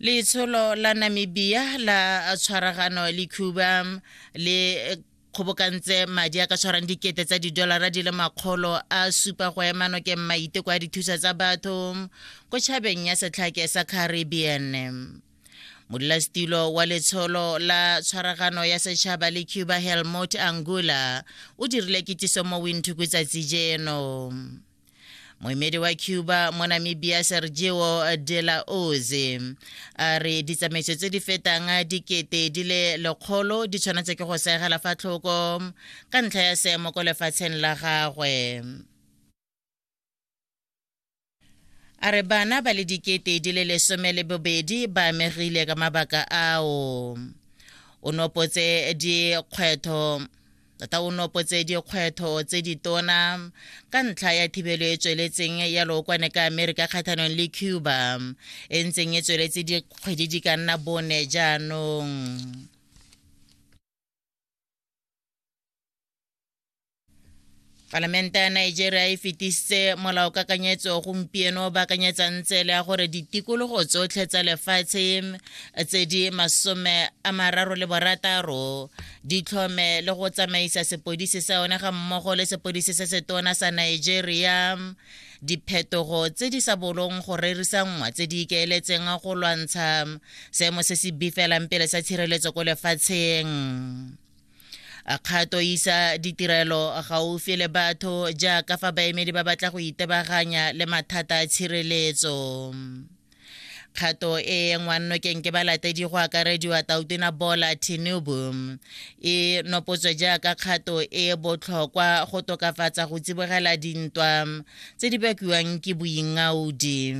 letsholo la namibia la tshwaragano le cuba le kgobokantse madi a ka tshwarang dikete tsa didolara di le makgolo a supa go ema nokeng maiteko a dithusa tsa batho ko tšhabeng ya setlhake sa caribbean modulasetilo wa letsholo la tshwaragano ya setšhaba le cuba helmut angula o dirile kitiso mo winthuku tsatsi jeno moemedi wa cuba mo namibia sergio de la oze a re ditsamaiso tse di fetang dikete di le lekgolo di tshwanetse ke go segela fa tlhoko ka ntlha ya seemo ko lefatsheng la gagwe A re bana ba le dikete di le lesome le bobedi ba amegile ka mabaka ao. O nopotse dikgwetho tota o nopotse dikgwetho tse ditona ka ntlha ya thibelo e tsweletseng ya lookwane ka amerika kgatlhanong le cuba e ntseng e tsweletse dikgwedi di ka nna bone jaanong palamente ya nigeria e fetisitse molaokakanyetso gompieno ba kanyetsang tsele ya gore ditikologo tsotlhe tsa lefatshe tse di masome a mararo le borataro di tlhome le go tsamaisa sepodisi sa yone ga mmogo le sepodisi se setona sa nigeria diphetogo tse di sa bolong go rerisanngwa tse di ikaeletseng go lwantsha seemo se se bifelang pele sa tshireletso ko lefatsheng a kgato isa ditirelo gaufi le batho jaaka fa baemedi ba batla go itebaganya le mathata a tshireletso kgato e ngwannokeng ke balatedi go akarediwa tautena bola tinubu e nopotswe jaaka kgato e botlhokwa go tokafatsa go tsibogela dintwa tse di bakiwang ke boingaudi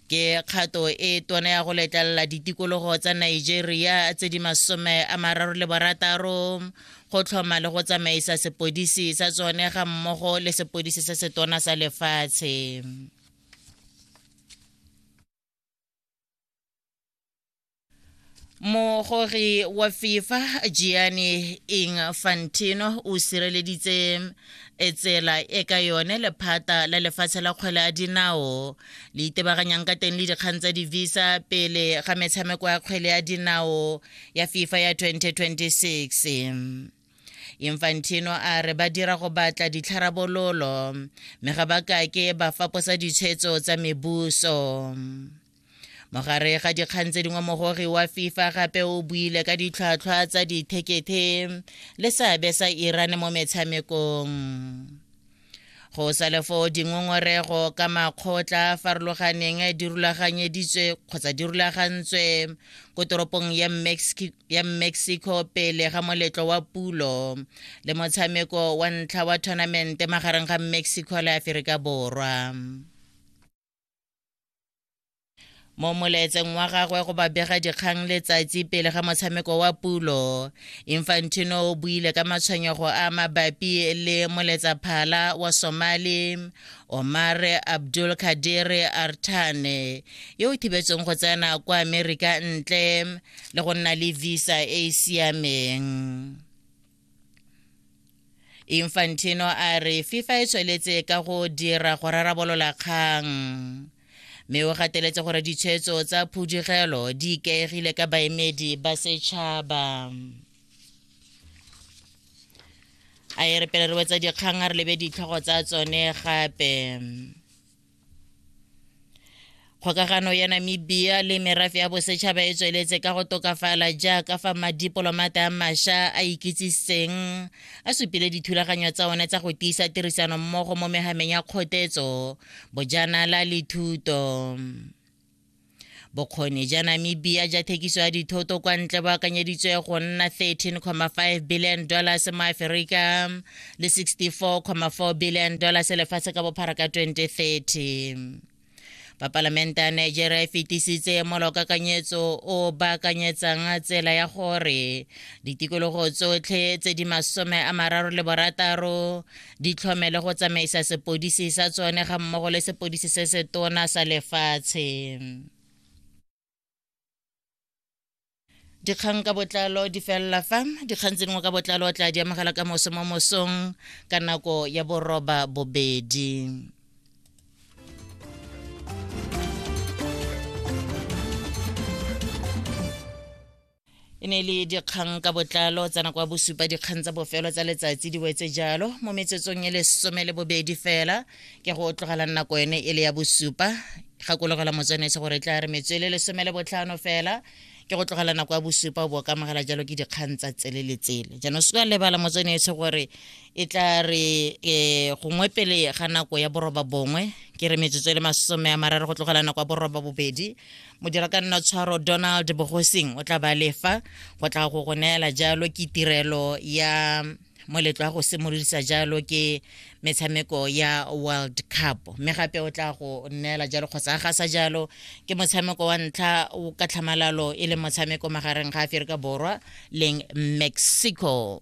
ke kgato e tona ya go letlelela ditikologo tsa nigeria tse di masome a mararo le barataro go tlhoma le go tsamaisa sepodisi sa tsone ga mmogo le sepodisi se se tona sa lefatshe mogori wa fifa gianni infantino o sireleditse e tsela e ka yone lephata la lefatshe la kgwele a dinao le itebaganyang ka teng le dikgang tsa di-visa pele ga metshameko ya kgwele ya dinao ya fifa ya 2026 infantino a re ba dira go batla ditlharabololo mme ga ba kake ba faposa ditshwetso tsa mebuso mogare ga dikgang tse dingwe mogogi wa fifa gape o buile ka ditlhwatlhwa tsa dithekethe le seabe sa iran mo metshamekong go sa le foo dingongorego ka makgotla a farologaneng di rulaganyeditswe kgotsa di rulagantswe ko toropong ya, Mexi ya mexico pele ga moletlo wa pulo le motshameko wa ntlha wa tournamente magareng ga mexico le aferika borwa mo molaetseng wa gagwe go babega dikgang letsatsi pele ga motshameko wa pulo infantino o buile ka matshwenyego a mabapi le moletsaphala wa somali omare abdul kadiri artane yo o thibetsweng go tsena kwa amerika ntle le go nna le visa e e siameng infantino a re fifa e tsweletse ka go dira go rarabolola kgang mme o gateletse gore ditshwetso tsa phudugelo di ikaegile ka baemedi ba setšhaba a e re pele re wetsa dikgang a re lebe ditlhogo tsa tsone gape kgokagano ya namibia le merafe ya bosetšhaba e tsweletse ka go tokafala jaaka fa madipolomata a masha a ikitsiseng a supile dithulaganyo tsa one tsa go tiisa tirisano mmogo mo megameng ya kgotetso bojanala le thuto bokgoni ja namibia ja thekiso ya dithoto kwa ntle bo akanyeditswe go nna 13,5 billion dollars mo aferika le 64,4 billion dollars lefatshe ka bophara ka 2030 bapalamente ya nigeria e fetisitse molokakanyetso o baakanyetsang tsela ya gore ditikologo tsotlhe tse di masome a mararo le borataro di tlhomele go tsamaisa sepodisi sa tsone ga mmogo le sepodisi se se tona sa lefatshe dikgang ka botlalo di felela fa dikgang tse dingwe ka botlalo o tla di amogela ka moso mo mosong ka nako ya boroba bobedi e ne le dikgang ka botlalo tsa nako ya bosupa dikgang tsa bofelo tsa letsatsi di wetse jalo mo metsetsong e lesome le bobedi fela ke go tlogela nako ene e le ya bosupa gakologela motswanetse gore tla re metso e le lesome le botlhano fela ke go tlogela nako ya bosupa o bo ka amogela jalo ke dikgang tsa tsele le tsele jaanong se ka lebala motswanetse gore e tla re um gongwe pele ga nako ya boroba bongwe ke re metsotso e le masome a mararo go tlogela nako ya boroba bobedi modira ka nna tshwaro donald bogosing o tla ba lefa go tla go go neela jalo ke tirelo ya moletlo wa go simolodisa jalo ke metshameko ya world cup mme gape o tla go neela jalo kgotsa a gasa jalo ke motshameko wa ntlha o ka tlhamalalo e le motshameko magareng ga aferika borwa leng mexico